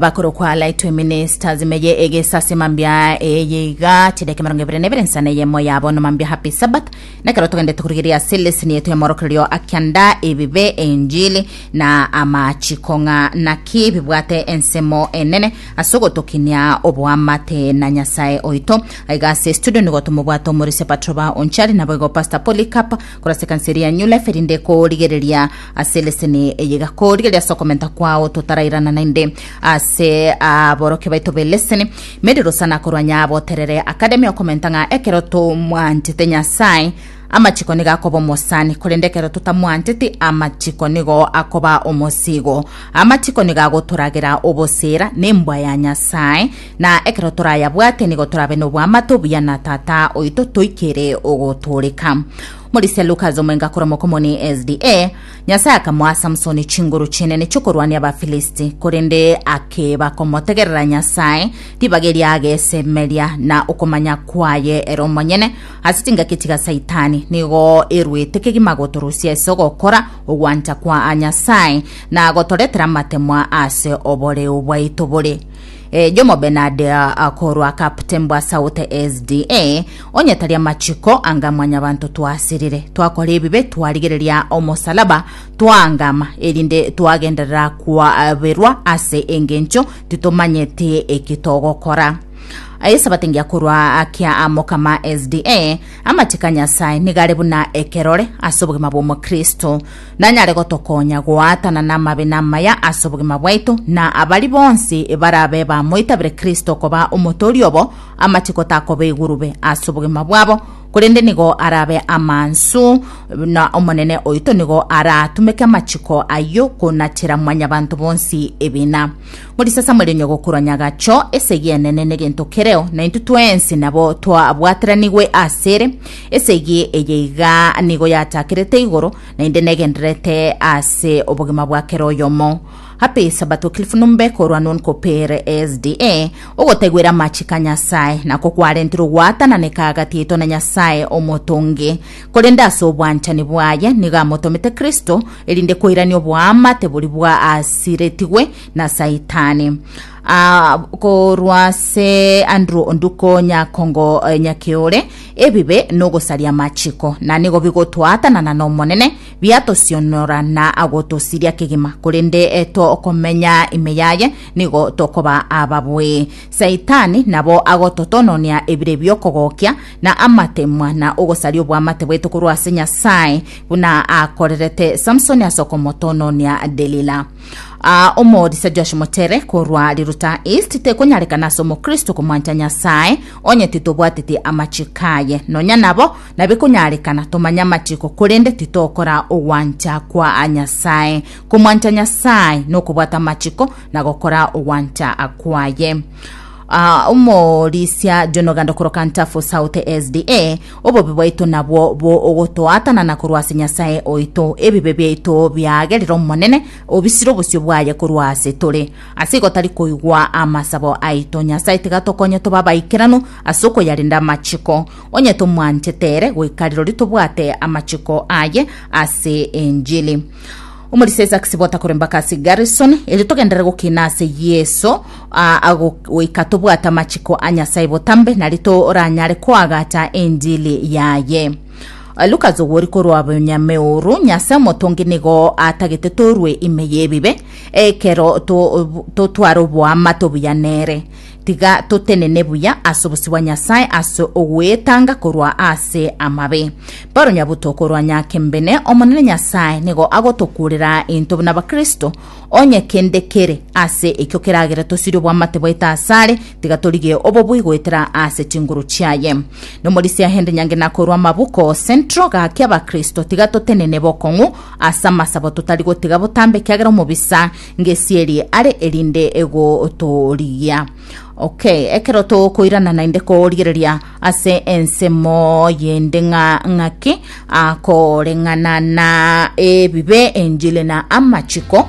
bakoro kwa Lightway Ministers meye egesase mambia eyiga chideke marongo ebere nebere nsana yemo yabo no mambia happy sabbath nekero togende tukurigeria ase lesson yetu ya morokererio akianda ebibe enjili na amachiko ng'a naki bibwate ensemo enene ase ogotokinia oboamate na nyasaye oito aiga ase studio nigo tumobwate omorisia patroba onchari naboigo pastor polycarp Koraseka nse eria nyule feri nde korigereria ase leseni eyiga korigereria ase okomenta kwao totarairana naende ase aborokio baito be leseni Mary Rusana korwanya abo terere Academy okomenta ng'a ekero tomwanchete Nyasae amachiko nigo akoba omosani korende ekero totamwancheti amachiko nigo akoba omosigo amachiko nigo agotoragera obosera nembwa ya Nyasae na ekero torayabwate nigo torabe n'oboamate obuya na Tata oito toikere ogotooreka. Morisia Lukas omoenga koromoka omone SDA, Nyasae akamoa Samsoni chinguru chinene chi'okorwania Abafilisti, korende akeba komotegerera Nyasae, ribaga eria agesemeria, na okomanya kwaye ere omonyene ase chingaki chiga Saitani nigo eruete kegima gotorusia ase ogokora ogwancha kwa Nyasae na gotoretera amatemwa ase oboreu bwaito bore Eyomo Benadia korwa captain bwa South SDA, onye tari amachiko anga mwanyabanto twasirire, twakora ebibe twarigereria omosalaba twaangama, erinde twagenderera kwaberwa ase engencho titomanyeti eki togokora. Esabato engiya korwa akia Mokama SDA, amachiko a Nyasae nigo are buna ekerore ase obogima bw'omokristo. nanyare gotokonya goaatana namabe namaya ase obogima bwaito, na abari bonsi barabe bamoitabire Kristo koba omotooria obo, amachiko takoba igurube ase obogima bwabo, korende nigo arabe amansu, na Omonene oito nigo araatumeke amachiko ayio konachera Mwanyabanto bonsi ebina. Morisasamore onye gokorwa nyagacho esegi enene negento kereo, na intwe twensi nabo twabwateranigwe asere. Esegi eye iga nigo yatakerete igoro, naende negendererete ase obogima bwa kera oyomo. Happy Sabbath Wycliffe Numbe korwa nun ko pere SDA ogotaiwera amachiko a Nyasae, nako kwarentirwe ogwatananeka agati aito na Nyasae omotongi. Korende ase obwanchani bwaye nigo amotomete Kristo, erinde koirania oboamate boria bwaasiretigwe na Saitani. Ah, korwa ase Andrew Onduko Nyakongo eh, Nyakeore, ebibe nogosaria amachiko, na nigo bigotwaatanana n'Omonene, biatosionora na agotosiria kegima, korende eh, tokomenya ime yaye nigo tokoba ababwee. Saitani nabo agototononia ebire biokogokia, na amatemwa, na ogosaria obwamate bwaito korwa ase Nyasae, buna akorerete Samsoni ase okomotononia Delila. Aa, omorisia Josh Mochere korwa riruta East, tekonyarekana ase omokristo komwancha Nyasae onye titobwateti amachiko aye. Nonya nabo nabikonyarekana tomanye amachiko korende titokora ogwancha kwa Nyasae. Komwancha Nyasae nokobwata amachiko na gokora ogwancha kwaye. Ah, omorisia jonoganda okoroka ntafo south sda obobe bwaito nabwo bo ogotoatanana korwa ase nyasaye oito ebibe biaito biagerire omonene obisire obosio bwaye korwa ase tore ase igo tari koigwa amasabo aito nyasaye tiga tokonye toba abaikeranu ase okoyarenda amachiko onye tomwanchete ere goika rirorio tobwate amachiko aye ase enjiri Omorisa Isaac Sibota koremba aka ase Garrison, erio togenderere gokina ase Yeso aa ago goika tobwate amachiko a Nyasae botambe, nari toranyare koagata enjili yaye. Lucas ogwori korwa Bonyameoru, Nyasae omotongi nigo atagete torwe ime y'ebibe, ekero to- to- tware oboamate obuya nere. Tiga totenene buya ase obosio bwa Nyasae ase ogwetanga korwa ase amabe. Paulo nyabuto korwa nyakembene, Omonene Nyasae nigo agotokuurera intwe buna Abakristo, onye kende kere ase ekio keragere tosirie obwamate bwaito asare, tiga torigie obobui goetera ase chinguru chiaye. Nomorisia Henry Nyangena korwa Amabuko Central, Gaki Abakristo tiga totenene bokong'u ase amasabo totari gotiga botambe ekiagera omobisa ngesierie are erinde egotorigia okay ekero tokoirana naende korigereria ase ensemo yende ng'a ng'aki akoreng'ana na ebibe enjili na amachiko